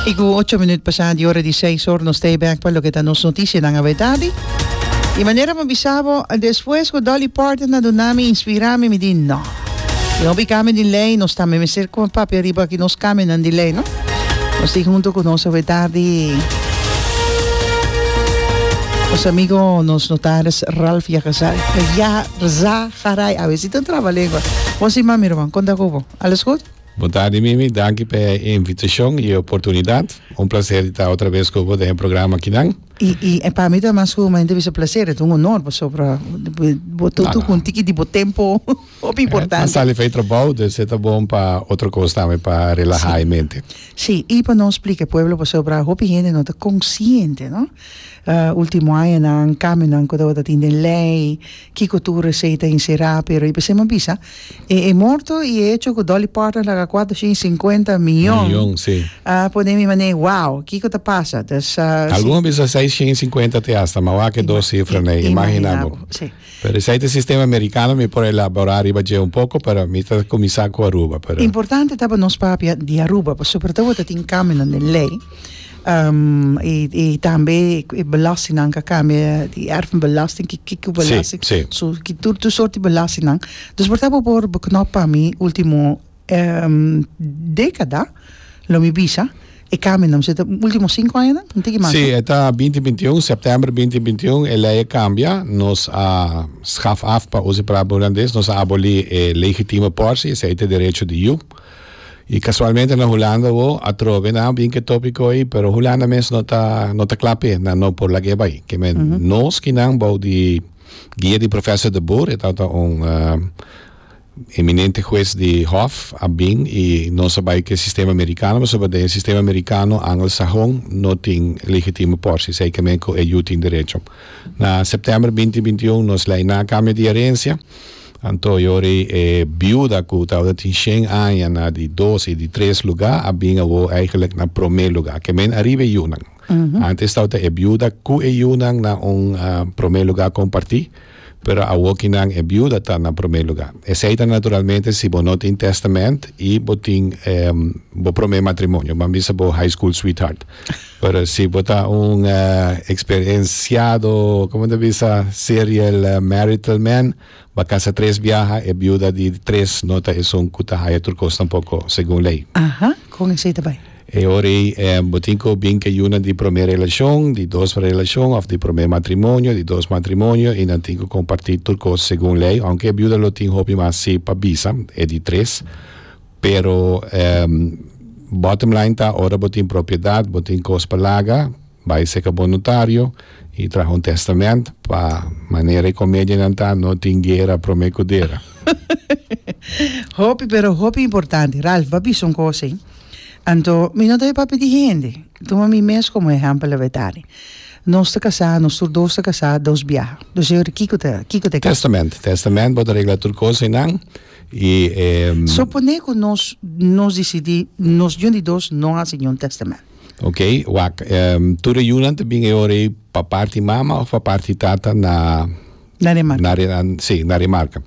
Y cu ocho minuut pasá di ora di seis hoor, nos stay back pa loke ta nos noticianan a wetadi. Y manera mi a bisa bo, despues cu Dolly Parton a duna mi, inspira mi, mi di no. Tin hopi cambio di ley, nos ta mester con papia ariba aki nos cambionan di ley, no? Nos tin hunto cu nos a wetadi nos amigo, nos notaris Ralph Yagazai, Yaha, Rza, Garai, a ver si ta traba lengua. Bon, sin mas mira man, con ta cu bo? Alles goed? Bondadi Mimi, danki p'e invitashon i e oportunidat. Un plaser di ta otra bes ku bo den e programa akinan. I i e pa mi ta mas ku mainta bisa plaser, e ta un honor pasobra bo ta tuku un tiki di bo tempo hopi importante. Nan sali fey trabou, dus e ta bon pa otro kos tambe, pa relaha e mente. Si, i pa no splika e pueblo pasobra hopi hende no ta konsiente, no? Ultimo añanan, kamionan ku tabata tin den lei, Kiko tur resei ta inserá, pero i p'esei m'en bisa, e e morto i e hecho ku Dolly Parton a laga kuater shin i sinkuenta miyon, Miyon, si. a pone mi manera, wow, kiko ta pasa? Dus, ah, si. Algun a bisa seis shin i sinkuenta te asta, ma wak e dos sifra n'e i, imaginá bo. imaginá bo, si. Pero esei ta e sistema amerikano, mi por elaborá riba dje un poko, pero mi ta kuminsá ku Aruba, pero. Importante ta pa nos papia di Aruba, pasobra tabata tin kambionan den lei. y tambe e belasting nan ka cambia di erfenbelasting ki kiko belasting sí, sí. so ki tur tur soort di belasting nan dus por ta bo por beknop pa mi ultimo decada lo mi bisa e cambio nan so ta ultimo cinco aña nan tin kiman Sí, eta 2021, septiember 2021, e lei a cambia. Nos a schaf af, pa usa e palabra holandés, nos a aboli e legitime portie, esei ta derecho di yu. Y casualmente na Hulanda bo a trobe nan bin ke topico ey pero Hulanda mes no ta no ta cla pe nan no por lag'e bay keme nos ki nan bou di guia di Professor de Boer e tabata un eminente huez di hof a bin y nos a bay ke sistema Americano pasobra den e sistema Americano Angelsahon no tin legitimo por si esey keme cu e yu tin derecho na September binti binti un nos ley nan a cambia di herencia Anto yori e biuda ku tabata tin shen aña na di dos i di tres lugá a bin awo eigelik na promé lugá. Ke men ariba e yunan. Antes tabata e biuda ku e yunan na un promé lugá kompartí, pero awoki nan e biuda ta na promé lugá. Esei ta naturalmente si bo no tin tèstamènt i bo tin bo promé matrimonio, ban bisa bo high school sweetheart. Pero si bo ta un experienciado, como ta bisa, serial marital man, bo casa tres biaha, e biuda di tres no ta esun cu ta haya tur cos tampoco, segun ley. Aha, con esey ta bay? E ora ey bo tin cu bin ke yuna di prome relacion, di dos relacion of di prome matrimonio, di dos matrimonio y nan tin cu comparti tur cos segun ley, aunke e biuda lo tin hopi mas si pa bisa, e di tres. Pero bottom line ta ora bo tin propiedat bo tin kos pa laga bai seka bon notario y traha un testament pa manera e comedianan ta no tin guera prome cu dera. Hopi pero hopi importante Ralph bo a bisa un cosa ey anto mi no ta he pa pidi hende tuma mi mes como ehempel la Betani nos ta casa nos tur dos ta casa dos biaha dus e ora kico ta kico ta e casa. Testament testament bo ta regla tur cosa enan. i e. Soponé ku nos nos disidí nos jun di dos no hasi niun tèstamènt. Ok, wak. E tur e yunan ta bin e ora ei pa parti mama òf pa parti tata na. Na Remarka. Na Re, si, na Remarka.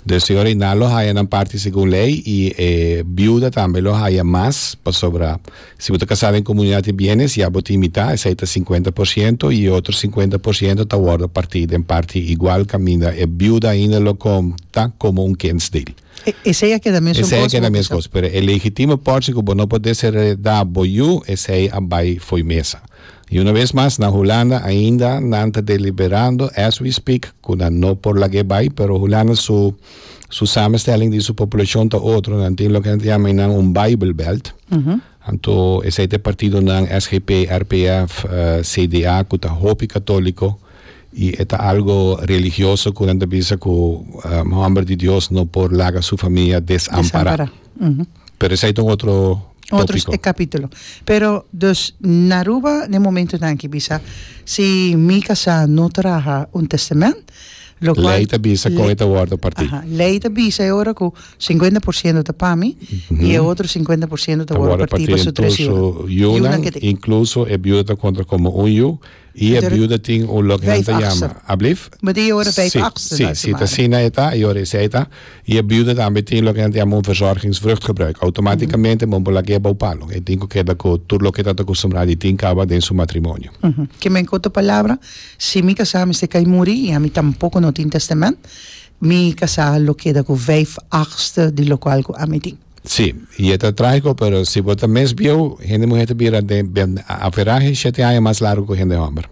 Dus e ora ei nan lo haya nan parti segun lei i e biuda tambe lo haya mas pasobra. Si bo ta kasá den komunidat di bienes, ya bo tin mitá, esei ta sinkuenta por siento, i e otro sinkuenta por siento ta wòrdu partí den parti igual kaminda e biuda ainda lo konta komo un kentsdeel. Esei a keda mesun kos, bo bisa. Esei a keda mesun kos, pero e legitime pòrchi ku bo no por desheredá bo yu, esei a bai fo'i mesa. I una bes mas, na Hulanda ainda nan ta deliberando, as we speak, ku nan no por lag'é bai, pero Hulanda su. Su samenstelling di su populacion ta otro. Nan tin loke nan ta yama einan un bijbelbelt. Anto esei ta e partidonan SGP, RPF, CDA cu ta hopi catolico y e ta algo religioso cu nan ta bisa cu homber di Dios no por laga su familia desampara. Pero esai ta un otro Otro tópiko. capítulo. Pero, dus na Aruba na e momento nan aki bisa si mi casá no traha un testament, lo cual Lei ta bisa con e ta wordo partí. Aha, lei ta bisa e ora cu cincuenta por ciento ta pa mi y e otro cincuenta por ciento ta Ta wordo wordo partí partí pa su den tur tres su yunan, yunan que tin. incluso e biuda ta conta como un yu Y e biuda tin un loke nan ta yama, ablif? But e ora vijf achtste na e semana. Si, si ta asina e ta, e ora esei e ta. Y e biuda tambe tin loke nan ta yama un verzorgingsvruchtgebruik. Automaticamente bo no por lagu'e bou palo. E tin cu keda cu tur loke e ta acostumbrado y tin caba den su matrimonio. Kima en corto palabra, si mi casá a mester cay muri y ami tampoco no tin testament, mi casá lo keda cu vijf achtste di locual cu ami tin. Sí, i e ta trágiko, pero si bo ta mes bieu, hende muhé ta bira den den aferahe shete aña mas largu ku hende hòmber.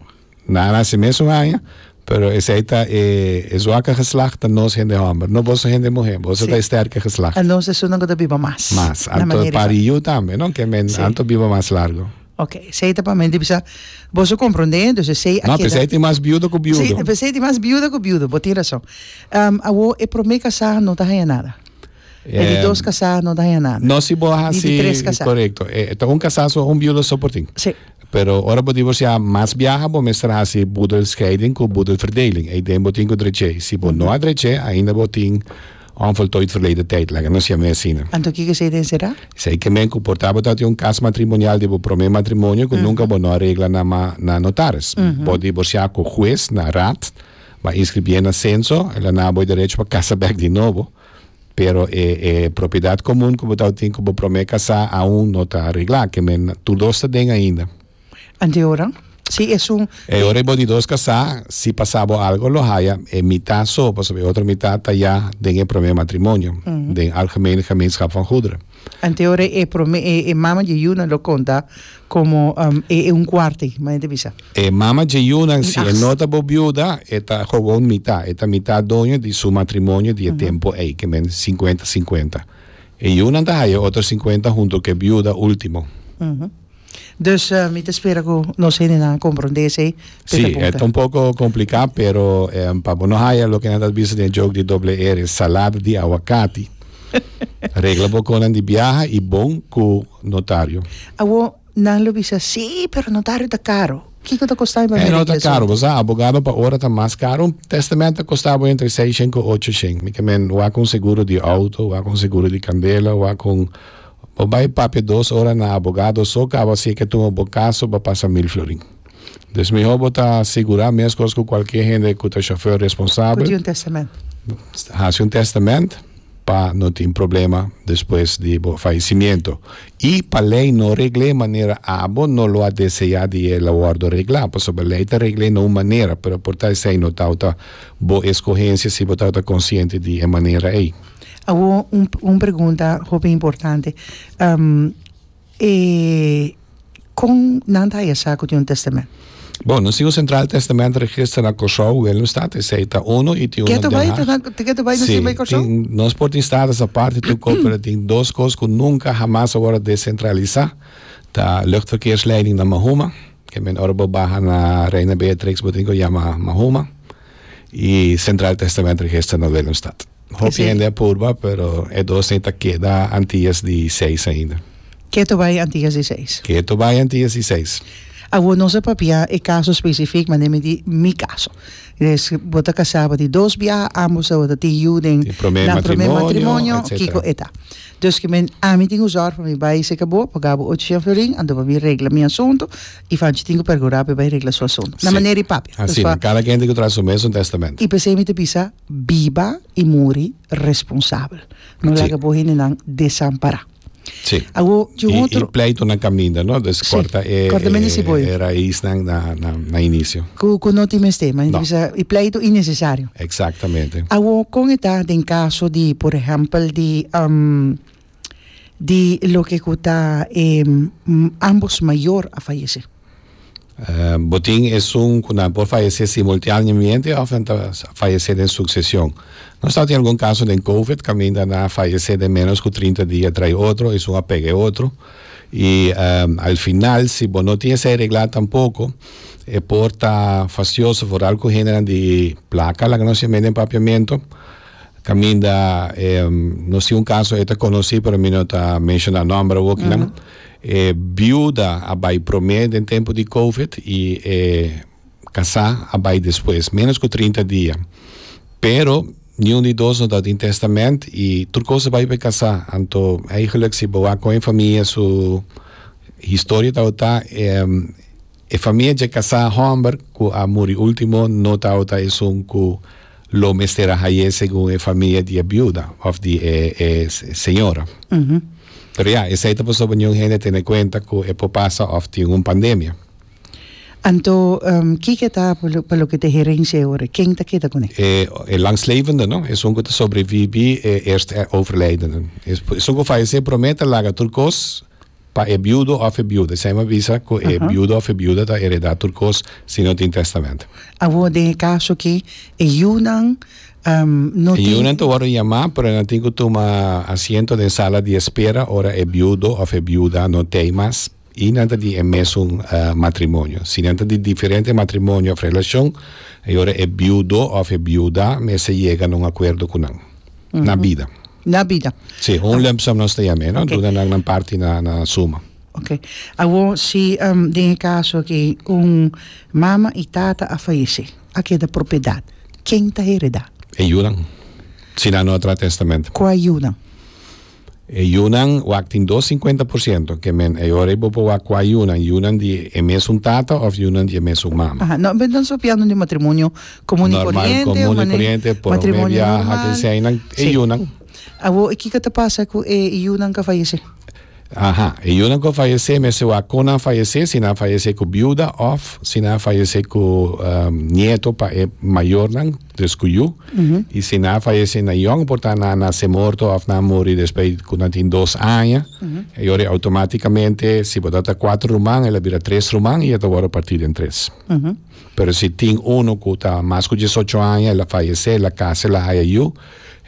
Nan a nase mes un aña, pero esei ta e e zwakke geslacht ta nos hende hòmber. No boso hende muhé, boso ta e stèrke geslacht. Anto nos esun nan ku ta biba mas. Mas. Anto pari yu tambe, no? Ke men anto biba mas largu. Oke, esei ta pa men di bisa, boso komprondé, dus esei a keda. No, p'esei tin mas biudo ku biudo. Sí, p'esei tin mas biuda ku biudo, bo tin rason. Awó e promé kasá no ta haña nada. E di dos casá no daña nada. No si bo hasi. Di tres casá. Correcto. E, ta un casá so un biudo so por tin. Sí. Pero ora bo divorciá mas biaha bo mester hasi boedelscheiding cu boedelverdeling. Ei den bo tin cu drech'é. Si bo no a drech'é ainda bo tin onvoltooid verleden tijd, laga nos ciam'é asina. Anto kiko esei den será? Esei ke men cu por ta bo ta tin un cas matrimonial di bo prome matrimonio cu nunca bo no a regla na ma na notaris. Bo divorciá cu hues na raad, bo a inscribié na censo, e la na bo e derecho pa casa bek di nobo. Pero e e propiedat komun ku bo tabata tin ku bo promé kasá aun no ta reglá, ke men tur dos ta den ainda. Anto ora si esun E ora bo di dos kasá, si pasá bo algo lo haya e mitá so, pasobra e otro mitá ta ya den e promé matrimonio, den algemene gemeenschap van goederen. Anteora e prome e e mama dje Yuna lo konta komo e e un kuarte, ma e ta bisa. E mama dje Yuna si e no ta bo biuda e ta gewoon mita, e ta mita doño di su matrimonio di e tempo ei, ke men sinkuenta sinkuenta. E Yunan ta haya otro sinkuenta hunto ku e biuda ultimo. Dus mi ta spera ku nos hendenan a komprondé esei Si, e ta un poko kompliká, pero pa bo no haya loke nan ta bisa den e joke di doble R, salada di awakati, regla bo konan di biaha i bon ku notario. Awor nan lo bisa, Sí, pero notario ta karu. Kiko ta kostá mi pa mira ki asuntu? Bo sa, abogado pa ora ta mas karu. Un tèstamènt ta kostá bo entre seishen ku ochoshen. Mi ta men wak un seguro di outo, wak un seguro di kandela, wak un. Bo bai papia dos ora na abogado so caba si e ke tuma bo caso pa pasa mil florin. Dus mihor bo ta sigura mescos cu cualkier hende cu ta chauffeur responsabel. Cu tin un testament. Haci un testament pa no tin problema despues di bo faecimiento. Y pa ley no regl'e manera abo no lo a desea di e lo wordo regla. Pasobra ley ta regl'e na un manera pero por ta esey no tawta bo escogencia si bo tawta consciente di e manera ey. Awor un un pregunta hopi importante e kon nan ta haya sa ku tin un testament? Bon, nos tin un sentral testament register na Kòrsou, Willemstad, esei ta uno i tin uno den Haag. Keto bai ta keto bai nos tin bai Kòrsou? Si, tin nos por tin status aparte tu ko pero tin dos kos ku nunka hamas a wòrdu desentralisá, ta luchtverkeersleiding na Mahuma, ke men ora bo baha na Reina Beatrix bo tin ko yama Mahuma. y Central Testament Register no den un stad. Hopi sí. hende a purba, pero e dos nei ta keda Antillas di seis ainda. Keto bai Antillas di seis. Keto bai Antillas di seis. Awo nos a papia e caso specific, ma nemi di mi caso. Des, bota casaba di dos bia, ambos a bota tin yu den na prome matrimonio, kiko eta. Dus ki men, ami tin usor pa mi bai seka bo, pa gabo ocho jan florin, ando pa mi regla mi asunto, E fanchi tin ku pergurá pa e bai regla su asuntu. Na manera i papia. Asina. Pasobra. Kada kende ku traha su mes un testamentu. I p'esei mi ta bisa, biba i muri responsabel. No laga bo hendenan desampará. Si. Awor, dje un otro. I, i pleitu na kaminda, no? Dus kòrta e. Si. Kòrta mende siboyo. E raisnan na, na, na inisio. Ku, ku no tin mester. M'a hende ta bisa, e pleitu innesesario. Eksaktamente. Awor, kon e ta den kaso di, por ehèmpel di. di loke ku ta e ambos mayor a fayese? Bo tin esun ku nan por fayese simultaneamente of nan ta fayese den suksesion? Nos ta tin algun kaso den covid kaminda nan a fayese den menos ku trinta dia tray otro esun a pega e otro i al final si bo no tin esei reglá tampoko e por ta fastioso foral ku hendenan di plaka laga nos yam'e den papiamento. Caminda e nos tin un caso e ta conoci pero mi no ta menciona nomber awor kinan e biuda a bay prome den tempo di covid y e casa a bay despues menos cu trinta dia pero niun di dos no ta tin testament y tur cos a bay pa e casa anto eigenlijk si bo a coge e famia su historia tabata e E famia dje casá homber cu a muri ultimo no tawata esun cu lo mester a haye segun e famia di e biuda of di e e señora. Pero ya, esey ta pasobra niun hende tene cuenta cu e por pasa of tin un pandemia. Anto, kiko ta pa loke ta e herencia e ora? Ken ta keda cu ne? E e langslevenden, esun cu ta sobrevibi e eerste overlijdenden. Esun cu fayece prome ta laga tur cos. Pa e biudo of e biuda. Esei mi bisa ku e biudo of e biuda ta heredá tur kos si no tin tèstamènto. Awor den e kaso ki e yunan no tin. E yunan ta wòrdu yamá pero nan tin ku tuma asiento den sala di espera ora e biudo of e biuda no t'ei mas i nan ta di e mesun matrimonio. Si nan ta di diferente matrimonio of relashon e ora e biudo of e biuda mester yega na un akuerdo ku nan na bida. na bida. Sí, un lump sum nos ta yam'e, no? Okay. Duna nan nan parti na, na suma. Ok. Awo, si um, den e caso que un mama y tata a fallece, a queda propiedad. Ken ta hereda? E yunan. Si nan no a tra testament. Kua yunan? E yunan wak tin dos 50%, que men e ora bo bo wak kua yunan, yunan di e mes un tata of yunan di e mes un mama. Aha, no, ben dan sopiando di matrimonio Común y corriente, común y corriente, por un viaja que sea, nan, e yunan. Abo, e kika ta pasa ku e yunan ka fallece? Aha, e yunan ka fallece, me se wa kon nan fallece, si nan fallece ku biuda of si nan fallece ku um, nieto pa e mayor nan, dus ku yu, mm -hmm. y si nan fallece na yong, por ta nan na se morto of nan muri después ku nan tin dos aña, mm -hmm. e yori automáticamente, si bo ta cuatro ruman, el a bira tres ruman y e ta worde partida en tres. Mm -hmm. Pero si tin uno cu ta mas cu diesocho aña el a fayece el a casa el a haya yu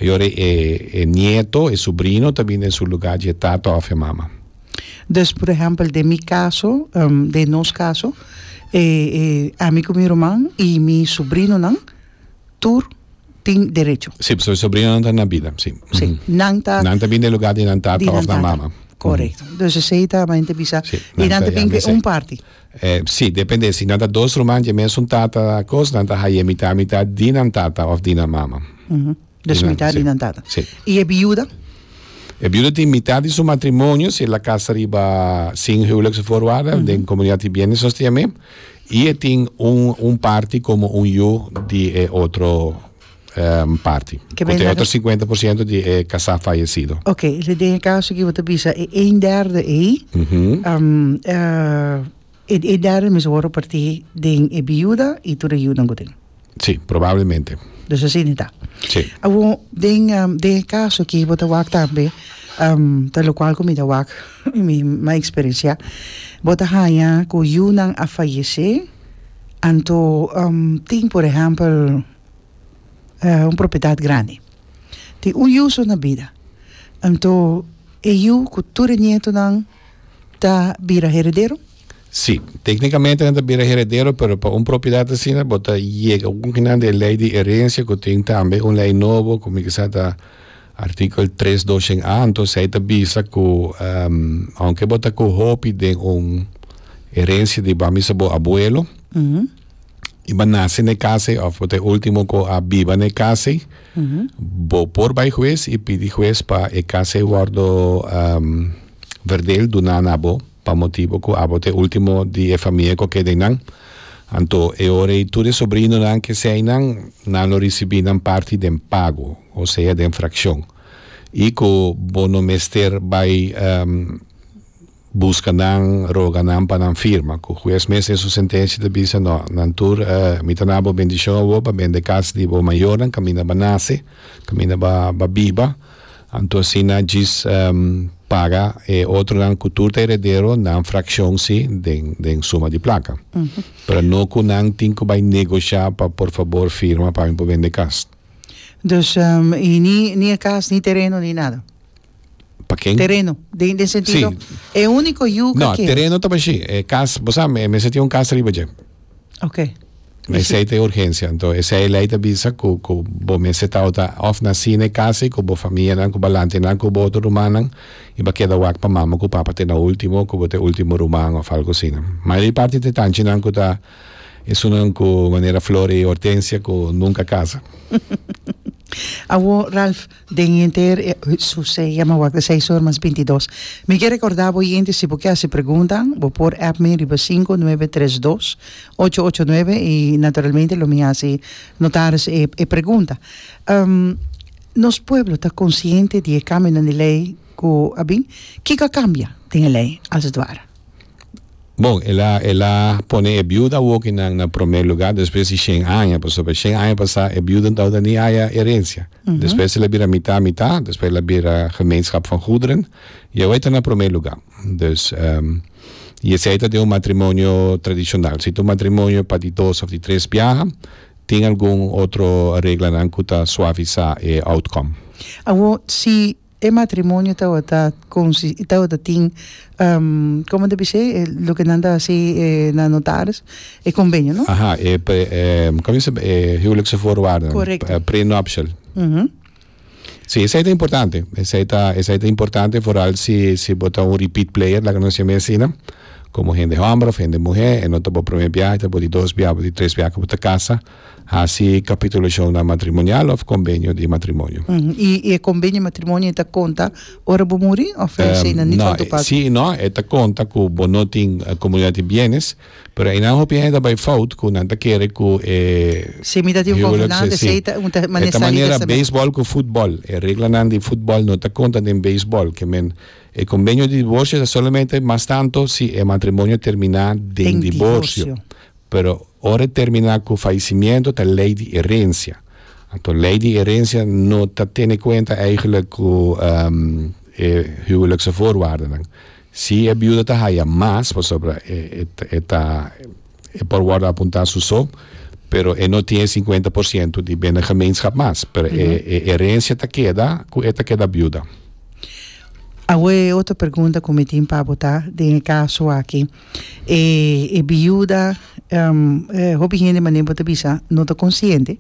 y ora e e nieto e subrino ta bini den su lugar dje tata of e mama. Dus por ehempel den mi caso den nos caso e e ami cu mi ruman y mi subrinonan tur tin derecho. Si pasobra e subrinonan ta na bida si. Si nan ta. Nan ta bini den lugar di nan tata of nan mama. Correcto. Dus esey ta mente bisa y nan ta bin cu un parti. Si, depende. Si nan ta dos ruman dje mesun tata kos, nan ta haya mitá mitá di nan tata òf di nan mama. Dus mitá di nan tata. Si. I e biuda? E biuda tin mitá di su matrimonio, si el a kasa riba sin huwelijkse voorwaarden, den komunidat di bienes zoals te yam'é, i e tin un parti komo un yu di e otro. Um parti. Cu te otro 50% di e casa fallecido. Ok, le den e caso que te bisa e een derde ei, mm -hmm. um, uh, e, e derde mis woro parti den e biuda y tur e yudan goten. Sí, probablemente. Dus así ni ta. Sí. Awo, den, um, den e caso que te wak tambe, um, ta lo cual cu mi te wak, mi ma experiencia, bota haya cu yunan a fallece, anto, um, tin, por ejemplo, un propiedad grandi tin un yu so na bida anto e yu cu tur e nietonan ta bira heredero? Si, tecnicamente nan ta bira heredero pero pa un propiedad asina bo ta yega un kinan di e ley di herencia cu tin tambe un ley nobo cu mi kisa ta artikel tres dos shen a anto esey ta bisa cu aunke bo ta cu hopi den un herencia di bamisa bo abuelo y bo nace ne casa y of bo ta e ultimo cu a biba ne casa y bo por bay huez y pidi huez pa e casa y wordo verdeel duna na bo pa motibo cu abo ta e ultimo di e famia cu a keda eynan anto e ora y tur e sobrinonan ke sea eynan nan lo ricibi nan parti den pago o sea den fraccion y cu bo no mester bay. buska nan, roga nan pa nan firma ku hues mes den su sentensia ta bisa, No, nan tur mi ta na bo bendishon a bo pa bende kas di bo mayornan kan mi na ba nase, kan mi na ba biba. Anto asina djis paga e otronan ku tur ta heredero nan frakshon si den suma di plaka. Pero no ku nan tin ku bai negoshá pa por fabor firma pa mi por bende kas. Dus, i ni e kas ni tereno ni nada? Pa ken? Tereno. Den, den sentido, e único yuca No, que... tereno ta bashi. E cas, bo sa, me, mester tin un cas riba dje. Ok. Na Bishi. esei ta e urgencia. Anto esei e lei ta bisa cu, cu bo mester tawata of nací na e casa y cu bo famianan, cu balantenan, cu bo otro rumannan y bo a keda wak pa mama cu papa te na ultimo, cu bo ta e ultimo ruman of algo asina. Mayoria parti ta e tanchinan cu ta esunnan cu manera Flor y Hortensia cu nunca casa. Awor, Ralph, Den henter e su se yama wak de seis or mas binti dos. Mi ke rekordá bo yente si bo ke hasi preguntanan bo por app mi riba sinku nuebe tres dos ocho ocho nuebe i naturalmente lo mi hasi notaris e e pregunta. Nos pueblo ta konsiente di e kambionan di lei ku a bin? Kiko a kambia den e lei als it ware? Bon, el a el a pone e biuda wokinan na promé lugá despues di shen aña, pasobra shen aña pasá e biuda no tabata ni haya herencia. Despues el a bira mitá mitá, despues el a bira Gemeenschap van Goederen i awor e ta na promé lugá. Dus, i esei ta den un matrimonio tradishonal. Si ta un matrimonio pa di dos òf di tres biaha, tin algun otro reglanan ku ta suavisá e outcome. Awor, si E matrimonio tabata consis y tabata tin como ta bishi loke nan ta haci na notaris e convenio no? Aha e como dice e huwelijkse voorwaarden Correcto. e prenuptial si esai ta importante esai ta esai ta importante vooral si si bo ta un repeat player laga nos yama asina como hende homber of hende muhe e no ta bo prome biaha ta bo di dos biaha bo ta di tres biaha cu bo ta casa. Hasi kapitulashonnan matrimonial òf kombenio di matrimonio. I e kombenio di matrimonio ta konta ora bo muri òf e hasi eina nit'an tupá ku. Sí i no. E ta konta ku bo no tin komunidat di bienes, pero einan hopi hende ta bai fout ku nan ta kere ku e Si mi ta tin un konfidante, huwelijk, sí. esei ta un ta manera E ta manera testament. beisbòl ku futbòl. E reglanan di futbòl no ta konta den beisbòl. Ke men, e kombenio di divorsio ta solamente mas tantu si e matrimonio terminá den Den divorsio. divorsio. Pero ora e termina cu faisimiento ta ley di herencia. Anto ley di herencia no ta tene cuenta eigenlijk cu e huwelijkse voorwaardennan. Si e biuda ta haya mas, pasobra e ta e por wordo apunta su so, pero e no tin e cincuenta por ciento di bende gemeenschap mas, pero e e herencia ta keda cu e ta keda biuda. Awe e otro pregunta cu mi tin pa bo ta den e caso aki. E e biuda hopi hende manera bo ta bisa no ta consciente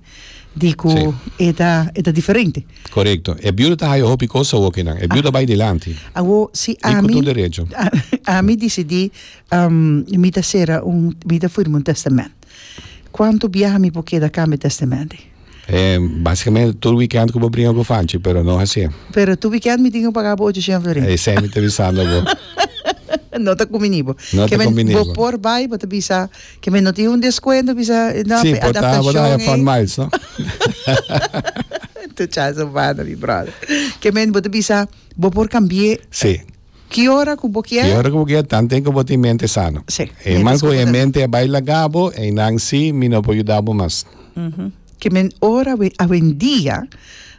di cu Sí. e ta e ta diferente. Correcto. E biuda ta haya hopi cosa awor ke nan. E biuda bai dilanti. Awor si Y cu ami tur derecho. a- ami decidi am, mi ta cera un mi ta firma un testament. Cuanto biaha mi por keda cambia testamenti? Eh, básicamente tur weekend ku bo bringa ku Fanchi, pero no hasié. Pero tur weekend mi tin ku paga bo 800 florin. Esei mi ta bisando bo. no ta kuminí bo. No ta kuminí bo. Bo por bai, bo ta bisa ke men no tin un deskuento, bisa no si, por ta, por ta haya fun miles, no? tu chance humano, mi brother. Ke men bo ta bisa, bo por kambié. Si. Ki ora ku bo kier? Ki ora ku bo kier tanten ku bo tin mente sano. Sí, mientras ku bo ta E man ku e mente a bai laga bo, einan sí mi no por yuda bo mas. Ke men ora we awendia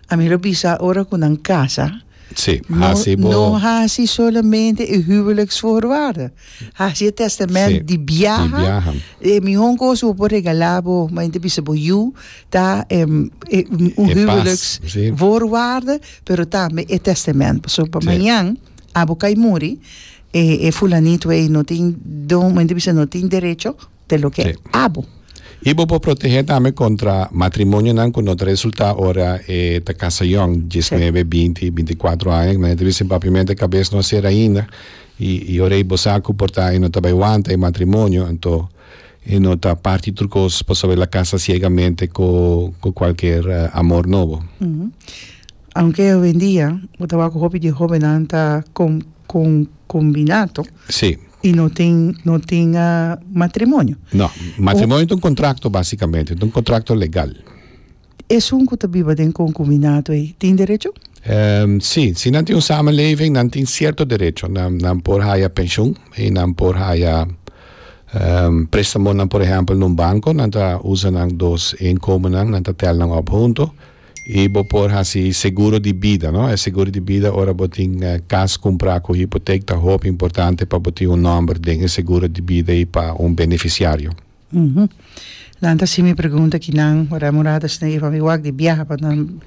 ami lo bisa ora ku nan kasa Sí, no hasi bo. no hasi solamente e huweliksvoorwaarden. Hasi e testament di biaha e mihon cos bo por regala bo ma yen ta bisa bo yu ta un huweliks voorwaarde pero tambe e testament paso pa mañan abo kai muri e fulanito ei no tin don men ta bisa no tin derecho te lo ke abo. I bo por protehé tambe kontra matrimonionan ku no ta resultá ora e ta kasa yòn, diesnebe, binti, bintiakuatro aña, ku nan e ta bisti papiamento e kabes no a sera ainda, i i ora i bo sa ku por ta e no ta bai wanta e matrimonio, anto e no ta parti tur kos pasobra el a kasa siegamente ku ku kualker amor nobo. Aunke hoendia bo ta wak ku hopi di e hóbennan ta kon kon. combinato Sí. y no tin, no tin ah, matrimonio. No, matrimonio es un contrato básicamente, es un contrato legal. Esun cu ta biba den concubinato ei, tin derecho? Ehm, sí, si nan tin un samenleving, nan tin cierto derecho. Nan, nan por haya pensioen y nan por haya ehm prestamonan, por ejemplo, en un banco. Nan ta usa nan dos inkomennan, nan ta tel nan op hunto. Y bo por haci seguro di bida, no? E seguro di bida ora bo tin cas cumpra cu hypotheek ta hopi importante pa bo tin un nomber den e seguro di bida y pa un beneficiario. Nan ta haci mi pregunta aki nan ora Murad ta snei van mi wak di biaha pa nan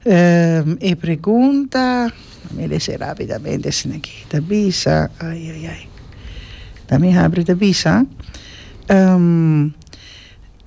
e pregunta a mi lese rapidamente asina aki ta bisa ai ai ai ta mi habri ta bisa.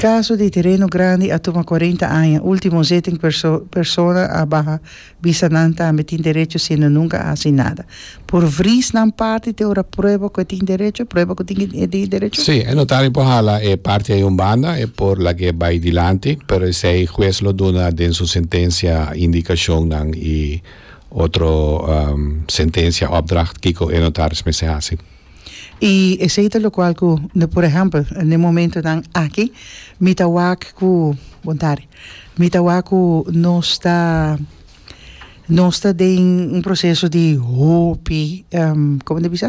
Kaso di Tereno Grandi a tuma kuarenta aña, ultimo zitting persona a baha bisa nan tambe tin derecho siendo nunka a hasi nada. Por vries nan parti te ora prueba ku e tin derecho, prueba ku tin e tin derecho? Sí, e notario por hala e parti ayi un banda, e por lag'e bai dilanti, pero esei hues lo duna den su sentencia indicacionnan y otro sentencia, opdracht kiko e notaris mester hasi. I esei ta lokual ku ne por ehèmpel na e momentunan aki mi ta wak ku bontari mi ta wak ku nos ta nos ta den un proseso di hopi kòm mi ta bisa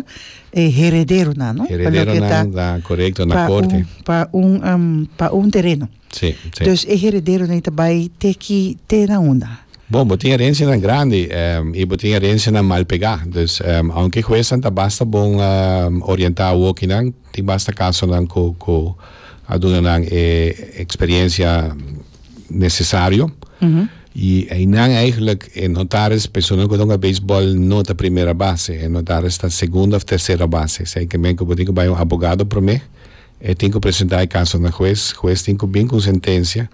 e herederonan no pa loke ta herederonan ta korekto na korte pa un pa un tereno. Sí, sí. Dus e herederonan e ta bai te ki, te na unda? Bon, bo tin herensianan grandi i bo tin herensianan mal pegá. Dus, ounke huesnan ta basta bon orientá awokinan, tin basta kasonan ku ku a duna nan e eksperiencia nesesario. I einan eigenlijk, e notaris, personanan ku ta hunga beisbòl no ta primera base. E notaris ta segunda òf tersera base. Esei ke men ku bo tin ku bai un abogado promé. E tin ku presentá e kaso na hues. Hues tin ku bin ku un sentensia.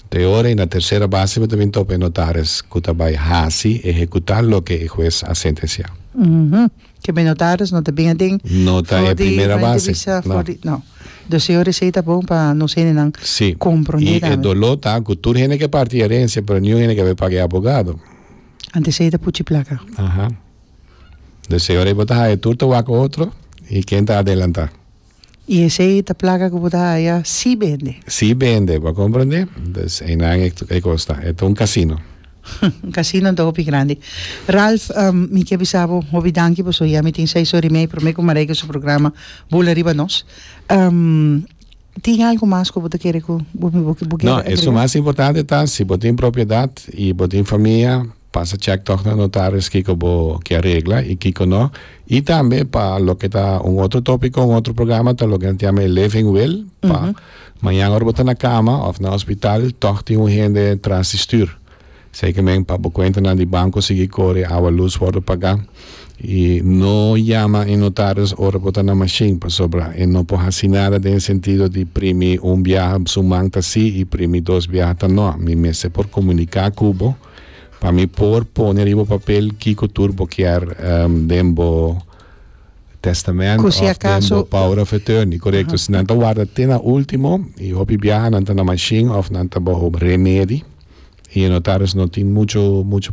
Nto e ora i na tersera base bo ta bin topa e notaris ku ta bai hasi, ehekutá, loke e hues a sentensiá. Kembei notaris no ta bin aden for di Renta di Visa for di. No. Dus e ora esei ta bon pa nos hendenan komprondé tambe. Si. I e doló ta ku tur hende ke parti erensia pero niun hende ke bai paga e abogado. Anto esei ta puchi plaka. Aha. Dus e ora ei bo ta haya tur ta wak otro i ken ta adelantá. Y esey ta plaga cu bo ta haya si bende. Si bende, bo a comprende? Entonces eynan e toca e cos ta. E ta un casino. Un casino ta hopi grandi. Ralph, mi kier bisa bo hopi danki pasobra ya mi tin seis ora y media prome cu Marijke su programa Bula riba nos. Tin algo mas cu bo ta kere cu bo kier agrega? No, e su mas importante ta si bo tin propiedad y bo tin famia. Pasa chèk tòg na notaris kiko bo ke a regla i kiko nò. I tambe pa loke ta un otro tópiko, un otro programa ta loke nan ta yama e living will pa mañan ora bo ta na kama òf na hospital tòg tin un hende tras di stür. Esei ke men pa bo kuentanan di banko sigui kore, awa, lus wòrdu pagá i no yama e notaris ora bo ta na mashin pasobra e no por hasi nada den e sentido di primi un biaha su man ta sí i primi dos biaha ta nò. Mi mester por komuniká ku bo. pa mi por pone riba papel kiko tur bo kier den bo testament of den bo power of attorney. Korekto. Si nan ta warda te na ultimo i hopi biaha nan ta na mashin of nan ta baho remedi i notaris no tin mucho mucho